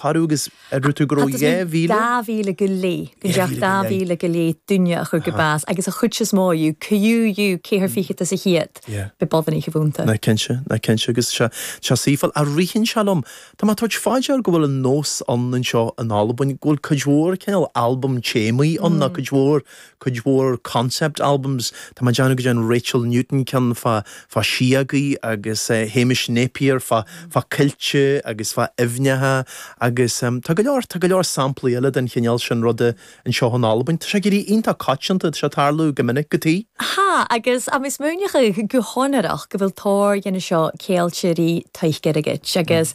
shárú agus a rugadh go raibh dhá mhíle. dhá mhíle go leith, gun deach dhá mhíle go leith duine a chur go bás agus a chuid is mó acu, co-dhiù, ceithre fichid as a' chéad, b' e boireannaich a bh' annta. Nach cinnte, nach cinnte agus sea, sea suífáil, a ritheann sé liom, tá mé ag tabhairt fá dear go bhfuil an nós ann anseo in Albain, go bhfuil cuid mhór cineál albam téamaí ann ná cuid mhór cuid mhór concept albums. Tá mé ag déanamh go ndearn Rachel Newton ceann fá fá síogaí agus Hamish Napier fá fá coillte agus fá aibhneacha agus tá go leor tá go leor samplaí eile den chineál sin ruda anseo in Albain. Tá sé ag éirí iontach coitianta, tá sé ag tarlú go minic go. Tha, agus tha mi smaoineachadh gu sònraichte gu bheil tòrr dhen a seo ceangailte ri taic airgid agus.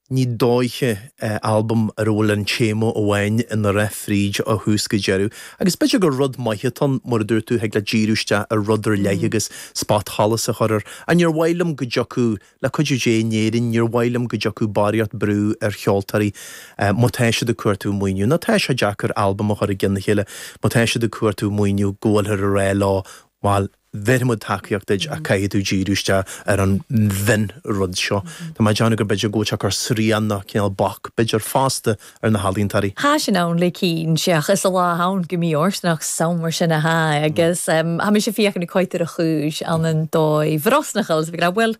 Ní dóiche, albam ar a bhfuil an téama amháin ina rith fríd ó thús go deireadh. Agus b'fhéidir gur rud maith atá ann, mar a dúirt tú, thig leat díriú isteach ar rud ar leith agus spotsolas a chur air. Ach níor mhaith liom go dtiocfadh, le cuidiú Dé, in Éirinn, níor mhaith liom go dtiocfadh barraíocht brú ar cheoltóirí má tá siad ag cuartú maoiniú, nó tá sé deacair albam a chur i gceann a chéile má tá siad ag cuartú maoiniú, go bhfuilthear ag rá leo, bhuel, bhéarfaimid tacaíocht duit ach caithfidh tú díriú isteach ar an aon rud seo. Tá mé ag déanamh gur b'fhéidir go bhfuil sé ag cur srian nó cineál bac, b'fhéidir, fosta ar na healaíontóirí. Tha sin ann le cinnt, seadh, 's an latha a th' ann gu mì-fhortanach 's ann mar sin a tha e agus tha mise a' feuchainn ri coimhead air a' chùis ann an dòigh bhrosnachail, 's ag ràdh, uill.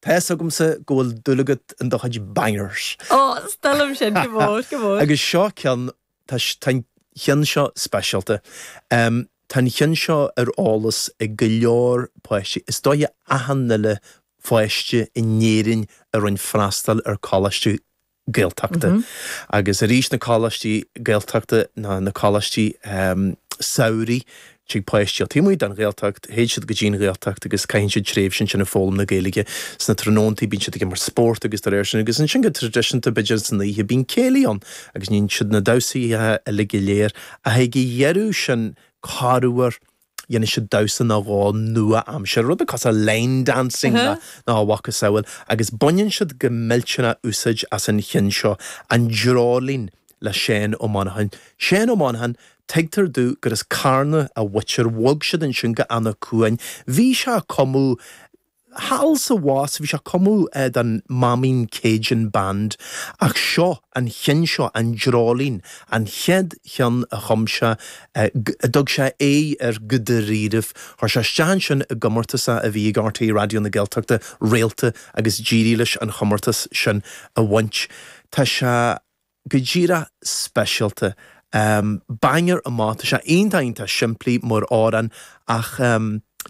Tá fhios agamsa go bhfuil dúil agat in do chuid bangers. Ó, 's toil leam iad, gu mòr, gu mòr. Agus seo ceann, tá an cheann seo speisialta. Tá an cheann seo ar eolas ag go leor páistí, is dóiche achan uile pháiste in Éirinn a rinne freastal ar choláiste Gaeltachta agus arís na coláistí Gaeltachta nó na coláistí samhraidh tig páistí ó taobh amuigh den Ghaeltacht, théid siad go dtí an Ghaeltacht agus caitheann siad tréimhse ansin ag foghlaim na Gaeilge sna tráthnóntaí, bíonn siad ag imirt spórt agus dá réir sin agus ansin go traidisiúnta b'fhéidir san oíche bíonn céilí ann agus níonn siad na damhsaí uilig go léir ach ag a dheireadh sin corruair, Dhéanfadh siad damhsa nó dhó nua-aimseartha, rud macasamhail line dancing nó a mhacasamhail, agus baineann siad go millteanach úsáid as an chinn seo, an dreoilín, le Seán Ó Monacháin. Seán Ó Monacháin, tuigtear domh gur as Carna a mhuintir, bhog siad ansin go Eanach Cuain. Bhí sé a' cumadh. Thall is abhus, bhí sé ag cumadh don Maimín Cajun Band, ach seo an cheann seo, an dreoilín, an chéad cheann a chum sé, a dtug sé aghaidh ar go dáiríribh. Chuir sé isteach ansin i gcomórtas a bhí ag RTÉ Raidió na Gaeltachta, Réalta agus d'éirigh leis an chomórtas sin a bhaint. Tá sé go díreach speisialta. Banger amach, tá sé iontach iontach simplí mar amhrán ach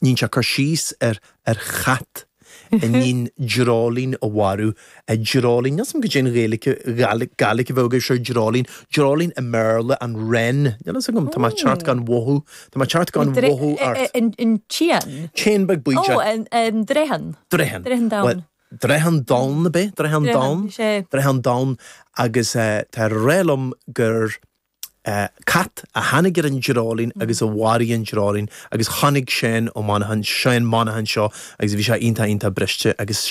níonn sé cur síos ar chat a níonn dreoilín a mharú. Dreoilín, níl 's agam goidé an Ghaeilge Gàidhlig a bheadh air seo, dreoilín, dreoilín i mBéarla, an wren, níl fhios agam, tá mé ag teacht gan mhothú, tá mé ag teacht gan mhothú ort. An t-éan? T-éan beag bídeach. An dreathan? Dreathan. Dreathan donn. Dreathan donn ab ea? Dreathan donn? Dreathan, sea. Dreathan donn agus dar liom gur cat a tháinig ar an dreoilín agus a mharaigh an dreoilín agus chonaic Seán Ó, Seán Monaghan seo agus bhí sé iontach, iontach briste agus sin.